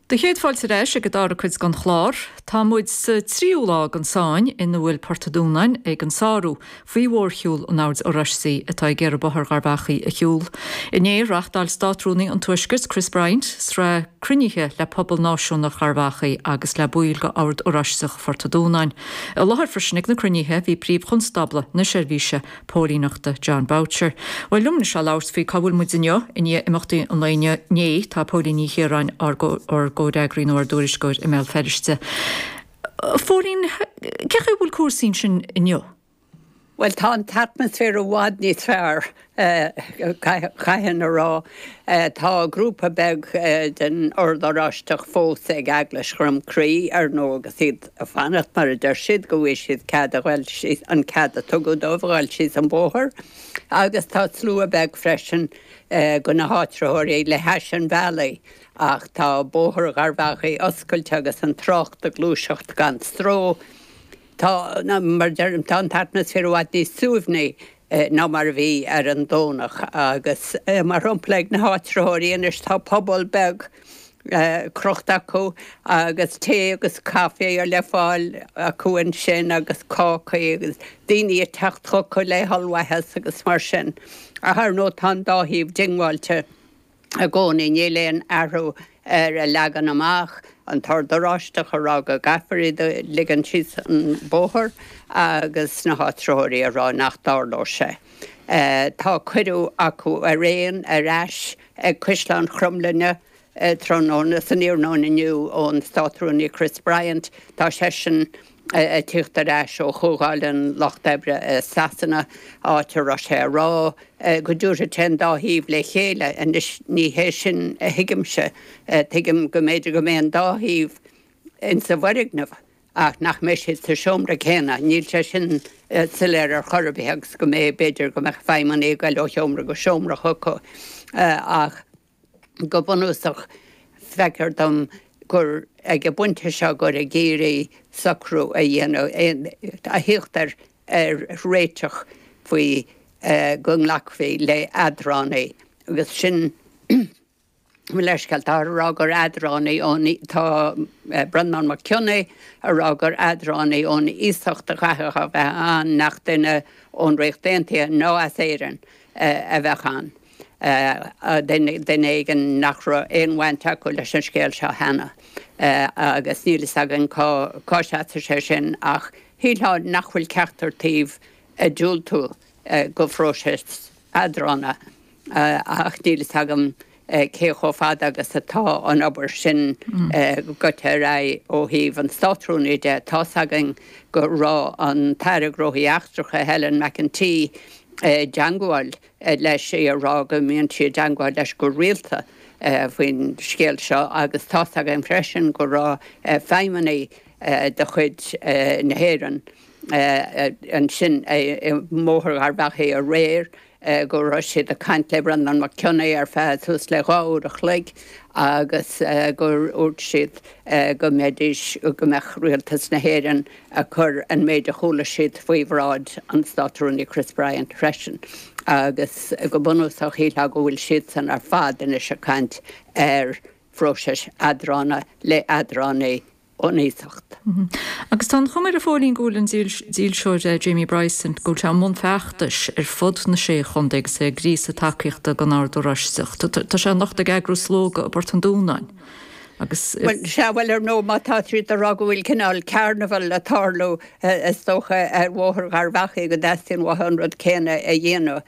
Céad fáilte ar ais ag an dara cuid den chlár. Tá muid sa tríú lá den sáinn ina bhfuil Port a' Dúnáin ag an sárú faoi mhórshiúl an Oird Oráistigh atá ag iarraidh Bóthar Gharbh Achaidh a shiúl. Inné, reáchtáil Státrúnaí an Tuaiscirt, Chris Bryant, sraith cruinnithe le pobal náisiúnach Gharbh Achaidh agus le baill de Ord Oráisteach Phort a' Dúnáin. I láthair freisin ag na cruinnithe bhí Príomh-Chonstábla na Seirbhíse póilíneachta Jon Boucher. Bhuel, liom anois ag labhairt faoi cá bhfuil muid inniu, i ndiaidh imeachtaí an lae inniu, inné, tá Póilín Ní Chiaráin, ár ár gcomhfhreagraí nó ár dtuairisceoir i mBéal Feirste. Phóilín, cén chaoi a bhfuil cúrsaí ansin inniu? Bhuel, tá an t-atmaisféar i bhfad níos fearr, chaithfinn a rá. Tá grúpa beag den Ord Oráisteach fós ag Eaglais Dhroim Crí, ar ndóigh, agus iad, a fanacht mar a deir siad, go bhfaighidh siad cead a ghoil síos, an cead a tugadh dóibh a ghoil síos an bóthar agus tá slua beag freisin de na háitritheoirí le hais an bhealaigh ach tá bóthar Gharbh Achaidh oscailte agus an trácht ag gluaiseacht gan stró. Tá, mar a deirim, tá an t-atmaisféar i bhfad níos suaimhní. ná mar a bhí ar an Domhnach agus, mar shampla, ag na háitritheoirí anois tá puball beag crochta acu agus tae agus caife le fáil acu ansin agus cácaí agus daoine ag teacht chucu le hollmhaitheas agus mar sin ach, ar ndóigh, tá an dá thaobh diongbháilte. i gcónaí. Níl aon athrú ar a leagan amach, an tOrd Oráisteach a rá go gcaithfear iad a ligean síos an bóthar agus na háitritheoirí a rá nach dtarlóidh sé. Tá cuireadh acu araon ar ais ag Caisleán Chromghlinne tráthnóna, san iarnóin inniu, ón Státrúnaí Chris Bryant. Tá seisean a tíocht ar ais ó Chomhdháil an Lucht Oibre i Sasana, áit a raibh sé ag rá go dtabharfadh sé an dá thaobh le chéile. Anois, ní hé sin a thuigimse. Tuigim go mb'fhéidir go mbeidh an dá thaobh ins an bhfoirgneamh ach nach mbeidh siad sa seomra céanna. Níl sé sin soiléir ar chor ar bith agus go mbeidh, b'fhéidir go mbeidh feidhmeannaigh ag goil ó sheomra go seomra chucu ach, Go bunúsach, feictear dom gur ag an bpointe seo gur ag iarraidh socrú a dhéanamh a thíocht ar réiteach faoi go nglacfaí le eadránaí agus sin mo leithscéal, tá a rá gur eadránaí ón, tá Breandán Mac Cionnaith a rá gur eadránaí ón iasacht a chaithfeadh a bheith ann nach duine ón Ríocht Aontaithe ná as Éirinn a bheadh ann. duine éigin nach raibh aon bhaint acu leis an scéal seo cheana agus níl fhios againn cá seasann sé sin ach shílfeá nach bhfuil ceachtar taobh ag diúltú do phróiseas eadrána ach níl fhios agam cé chomh fada agus atá an obair sin goite ar aghaidh ó thaobh an Státrúnaí de. Tá's againn go raibh an tAire Gnóthaí Eachtracha, Helen McEntee, i dteangmháil leis í a rá go mbíonn sí i dteangmháil leis go rialta faoin scéal seo agus tá's againn freisin go raibh feidhmeannaigh de chuid na hÉireann ansin i mBóthar Gharbh Achaidh aréir go raibh siad ag caint le Breandán Mac Cionnaith ar feadh suas le dhá uair a chloig agus gur úirt siad go mbeidís, go mbeadh Rialtas na hÉireann. ag cur an méid a chuala siad faoi bhráid an Státrúnaí Chris Bryant freisin agus go bunúsach shílfeá go bhfuil siadsan ar fad anois ag caint ar phróiseas eadrána le eadránaí ón iasacht. Agus tá an chuma air a Phóilín go bhfuil an dílseoir Jamie Bryson, go bhfuil sé i mbun feachtais ar fud na sé chontae agus é ag gríosadh tacaíochta don Ord Oráisteach. Tá sé anocht ag eagrú slógadh i bPort an Dúnáin. agus. Bhuel, sea, bhuel, ar ndóigh, má tá siad ag rá go bhfuil cineál carnival ag tarlú, is dócha, ar Bhóthar Gharbh Achaidh, go dteastaíonn uathu an rud céanna a dhéanamh.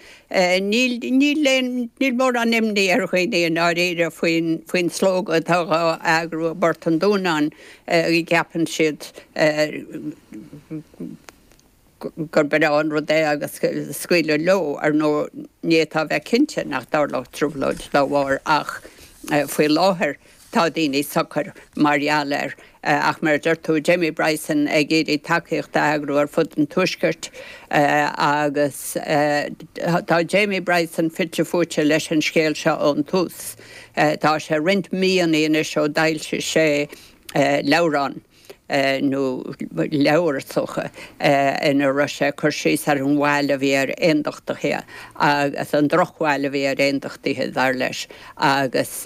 Níl, níl aon, níl mórán imní ar dhaoine i ndáiríre faoin, faoin slógadh atá dhá eagrú i bPort an Dúnáin, a gceapann siad. gur breá an rud é agus scaoileadh leo, ar ndóigh, ní fhéadfá a bheith cinnte nach dtarlódh trioblóid dá bharr ach faoi láthair tá daoine socair mar gheall air. Ach mar a deir tú, Jamie Bryson ag iarraidh tacaíocht a eagrú ar fud an tuaiscirt agus tá Jamie Bryson fite fuaite leis an scéal seo ón tús. Tá sé roinnt míonna anois ó d'fhoilsigh sé leabhrán. nó leabhar is dócha, ina raibh sé ag cur síos ar an bhail a bhí ar aondachtaithe agus an drochbhail a bhí ar aondachtaithe, dar leis, agus.